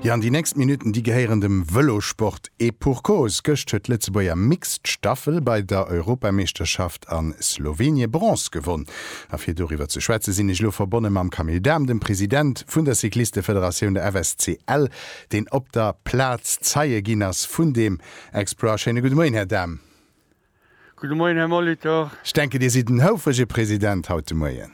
Jo, an déi nächst Minutten, déi gehéieren dem Vëlosport. Et pour cause, Gëscht huet d'Lëtzebuerger Mixed Staffel bei der Europameeschterschaft a Slowenien Bronze gewonn. A fir doriwwer ze schwätzen, sinn ech elo verbonne mam Camille Dahm, dem President vun der Cyclistefederatioun, der FSCL, deen op der Plaz Zeie ginn ass vun deem Exploit. Schéine gudde Moien, Här Dahm. Gudde Moien, Här Molitor. Ech denken, Dir sidd en houfrege President haut de Moien.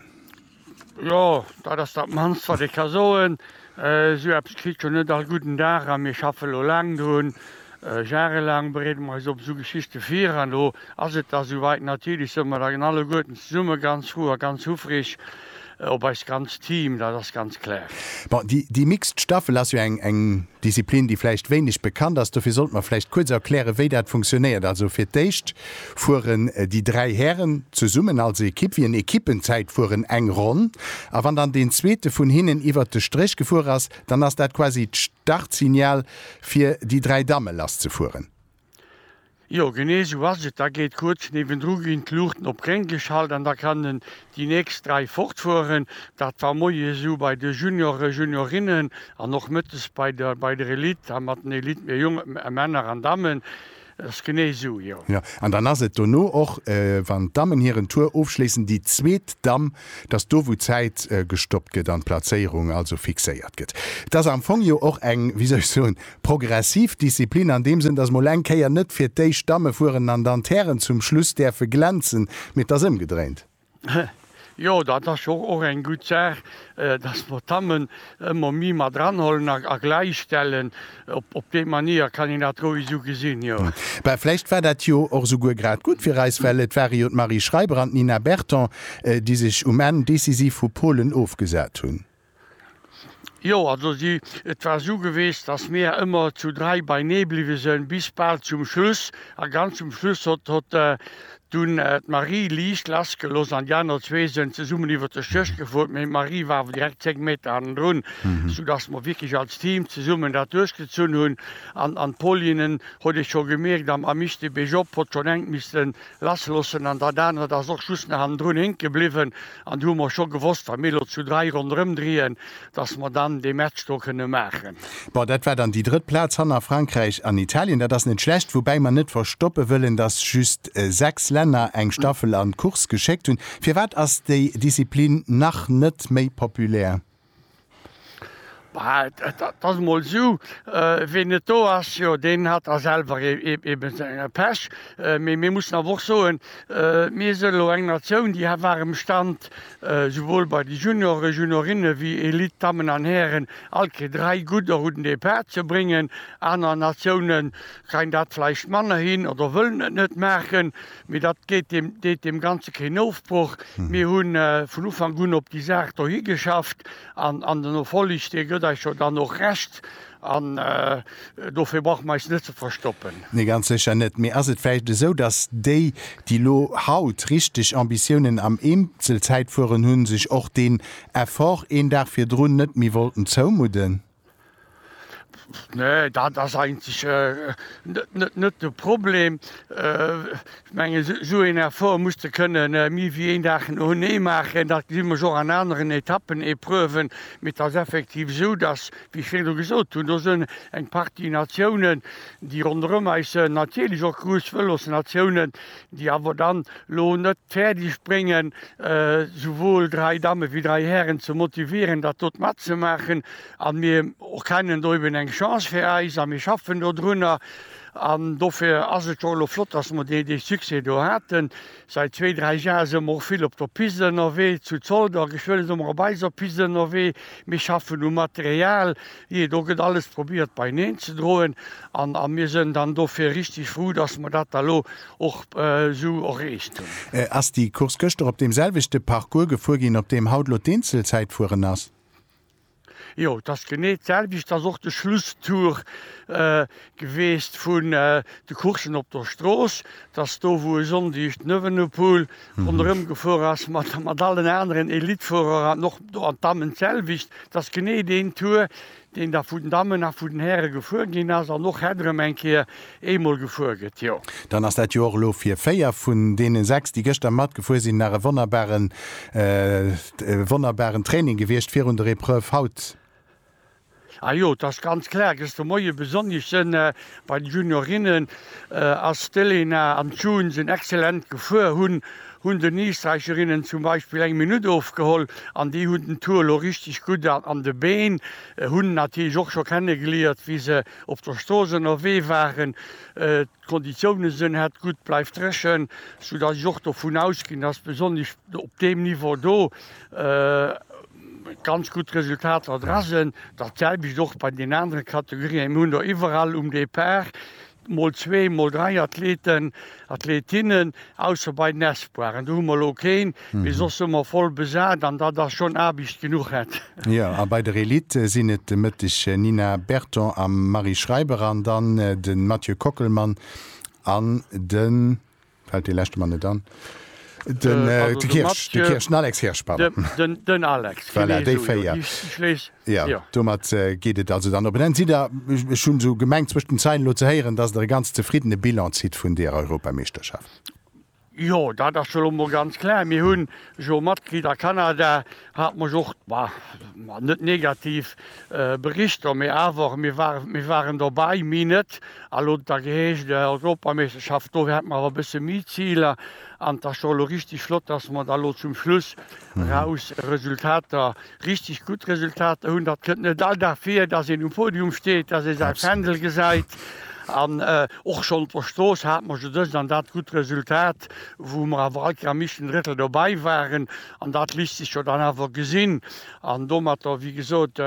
Jo, dat ass dat mannst, wat ee ka soen. Esou eppes kritt jo net all gudden Dag, a mir schaffe lo laang drun. Jarelaang bereede mer eis op esou Geschichte vir, an do ass et da souwäit. Natierlech sou mer da alleguerten zesumme ganz frou a ganz huffreg, Op eist ganzt Team, dat ass ganz klär. Bon, déi Mixed Staffel ass jo eng Disziplin, déi vläicht wéineg bekannt ass. Dofir sollte mer vläicht kuerz erklären, wéi dat funktionéiert. Also fir d'éischt fueren déi dräi Hären zesummen als Ekipp, wéi en Ekippenzäitfueren, eng Ronn. A wann dann deen Zweete vun hinnen iwwert de Stréch gefuer ass, dann ass dat quasi d'Startsignal fir déi dräi Damme lasszefueren. Jo genee sou ass et, da geet kuerz niewendru ginn d'Luuchten op gréng geschalt an da kannen déi nächst 3 fortfueren. Dat war moies esou bei de Junioren, Juniorinnen an och mëttes bei der bei der Elite a mat den Elite mir Jong Männer an Dammen. Et ass genee sou, jo. Jo, an dann ass et dono och, wann d'Dammen hiren Tour ofschléissen, déi zweet Damm, dass do wou d'Zäit gestoppt gëtt an d'Plazéierung also fixéiert gëtt. Et ass am Fong jo och eng, wéi soll ech soen, Progressiv Disziplin an deem Sënn, dass mol eng Kéier net fir d'éischt d'Damme fueren an dann d'Hären zum Schluss däerfe glänzen, mee d'ass ëmgedréint. Jo, dat ass jo och eng gutt Saach, dass mer d'Dammen ëmmer méi mat eranhuelen a gläichstellen. Op déi Manier kann een dat roueg esou gesinn, jo. Bah, vläicht war dat jo och esouguer grad gutt fir eis, well et ware jo d'Marie Schreiber an d'Nina Berton, déi sech um Enn decisiv vu Polen ofgesat hunn. Jo, also si, et war su gewest, dass mir ëmmer zu dräi beinee bliwwe sen, bis bal zum Schluss. A ganz zum Schluss hott, hott dunn d'Marie liicht lass geloss an déi aner zwee sen zesummen iwwert de Stéch gefuer. Mee d'Marie war awer direkt zéng Meter hannendrun, su dass mer wierklech als Team zesummen dat duerchgezunn hun. An, an d'Pauline, hott ee scho gemierkt, am, am Mischtebesch op, hott schon enk missten, lass loossen an dat anert ass och just nach hannendrun hénke bliwwen an do hu mer scho gewosst, wa mir elo zu dräi ronderëm driien, datt mer dann dee Match do kënne maachen. Bon, dat war dann déi drëtt Plaz hanner Frankräich an Italien. Dat ass net schlecht, woubäi mer net verstoppe wëllen, datt just sechs Länner eng Staffel an d'Course geschéckt hunn. Firwat ass déi Disziplin nach net méi populär? Et ass emol esou, ween net do ass, jo deen hat da selwer eebe senge Pech. Mee mir mussen awer och soen, mir sinn elo eng Natioun, déi war am Stand, souwuel bei de Junioren, Juniorinnen ewéi Elite, Dammen an Hären, all d'Kéier dräi gutt a gudden Depart ze bréngen. Aner Natiounen kréien dat vläicht manner hin oder wëllen et net maachen. Mee dat deet deem, deet deem Ganze keen Ofbroch. Mir hu vun Ufank un op déi Saach do higeschafft an, an den Erfolleg, dee gëtt eis jo dann och Recht an dofir brauche mer eis net ze verstoppen. Nee, ganz sécher net. Mee ass et vläicht esou, datt déi, déi elo haut richteg Ambitiounen am Eenzelzäitfueren hunn, sech och deen Effort een Dag virdrun net méi wollten zoumudden? Nee, dat ass eigentlech net de Problem. Ech mengen, esou een Effort muss de kënnen méi wéi een Dag noenee maachen. Dat gesinn ech och an aneren Etappen, Epreuven. Mee et ass effektiv esou, datt, wéi ech virdru gesot hunn, do sinn eng Partie Natiounen, déi ronderëm eis sinn, natierlech och grouss Vëlosnatiounen, déi awer dann elo net fäerdeg bréngen, souwuel dräi Dammen wéi dräi Hären ze motivieren, dat dot matzemaachen. A mir erkennen do eben eng Chance fir eis a mir schaffen dodrunner. An dofir ass et och elo flott, dass mer dee Succès do haten. Säit zwee, dräi Jahre si mer och vill op der Piste ënnerwee. Zu Zolder, geschwë si mer op eiser Piste ënnerwee. Mir schaffen u Material. Jee, do gëtt alles probiert beineen ze droen an a mir sënn dann dofir richtig frou, dass mer dat da lo och esou erreecht hunn. Ass déi Course gëschter op deem selwechte Parcours gefuer ginn, op deem haut lo d'Eenzelzäit fueren ass? Jo, et ass genee d'selwecht, et ass och de Schlusstour. geweest vun de Coursen op der Strooss, dass do wou e Sonndeg den Evenepoel ronderëm gefuer ass mat allen aneren Elitfuerer an och do an d'Dammen d'selwecht, dass genee deen Tour deen da vun den Dammen a vun den Häre gefuer ginn ass an och het erëm eng Kéier eemol gefuer gëtt, jo. Dann ass dat jo och elo fir 4 vun deene 6 déi gëschter matgefuer sinn nach e wonnerbaren, wonnerbaren Training gewiescht virun der Epreuve haut. Ah jo, et ass ganz klar, gëschter Moie besonnesch sënn bei den Juniorinnen ass d'Elena an d'June sënn excellent gefuer, hunn hunn den Eesträicherinnen zum Beispill eng Minutt ofgeholl an déi hunn den Tour elo richteg gutt an de Been, hunn natierlech och scho kennegeliiert wéi se op der Strooss ënnerwee waren. D'Konditioune sënn hat gutt, bleift dréchen, sou dass ech och dovun ausginn, dass besonnesch op deem Niveau do ganz gutt Resultater dra sënn. Dat selwecht och bei den anere Kategorien. Mir hunn der iwwerall um Depart mol zwee, mol dräi Athleten, Athletinnen, ausser bei den Espoiren. Do hu mer elo keen. mee soss hu mer voll besat an datt ass schonn Aarbicht genuch et. Jo, a bei der Elite sinn et de Mëtteg Nina Berton a Marie Schreiber an dann de Mathieu Kockelmann an de, fält dee leschte mer net an, den Kirsch, de Kirsch, den Alex Kirsch, pardon. Den Alex, genee esou, jo. Déi véier, jo. Jo, domat geet et also dann op en Enn. Sidd Der, ech hu sou gemengt zwëscht den Zeilen elo ze héieren, datt Der e ganz zefriddene Bilan zitt vun deer Europameeschterschaft? Jo, dat ass elo mol ganz klär. Mir hunn jo Matglied a Kanada, hat mech och, ma net negativ, Berichter, mee awer mir waren, mir waren dobäi, mi net. A elo huet et da geheescht, Europameeschterschaft, do hätte mer awer e bësse méi Ziler. An et ass jo elo richtig flott, dass mer da elo zum Schluss eraus Resultater Richteg gutt Resultater hunn. Dat kënnt net all Dag vir, dass een um Podium steet, dass ee säi Fändel gesäit. An och schonn op der Strooss hate mer jo dëst an dat gutt Resultat, wou mer awer all Kéier am éischten Drëttel dobäi waren. An dat léisst sech jo dann awer gesinn. An domatter, wéi gesot,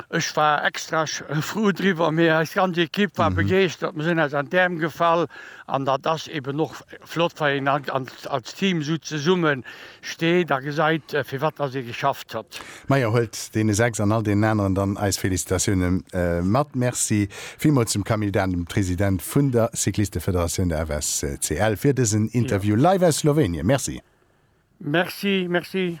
Ech war extra frou driwwer, mee eis ganz Ekipp war begeeschtert. Mir sinn eis an d'Äerm gefall an dat ass eben och flott, wa een als Team esou zesumme steet a gesäit, fir wat dass ee geschafft huet. Majo, huelt deene 6 an all deenen aneren dann eis Felicitatioune mat. Merci villmools dem Camille Dahn, dem President vun der Cyclistefederatioun, der FSCL, fir dësen Interview live aus Slowenien. Merci. Merci, merci.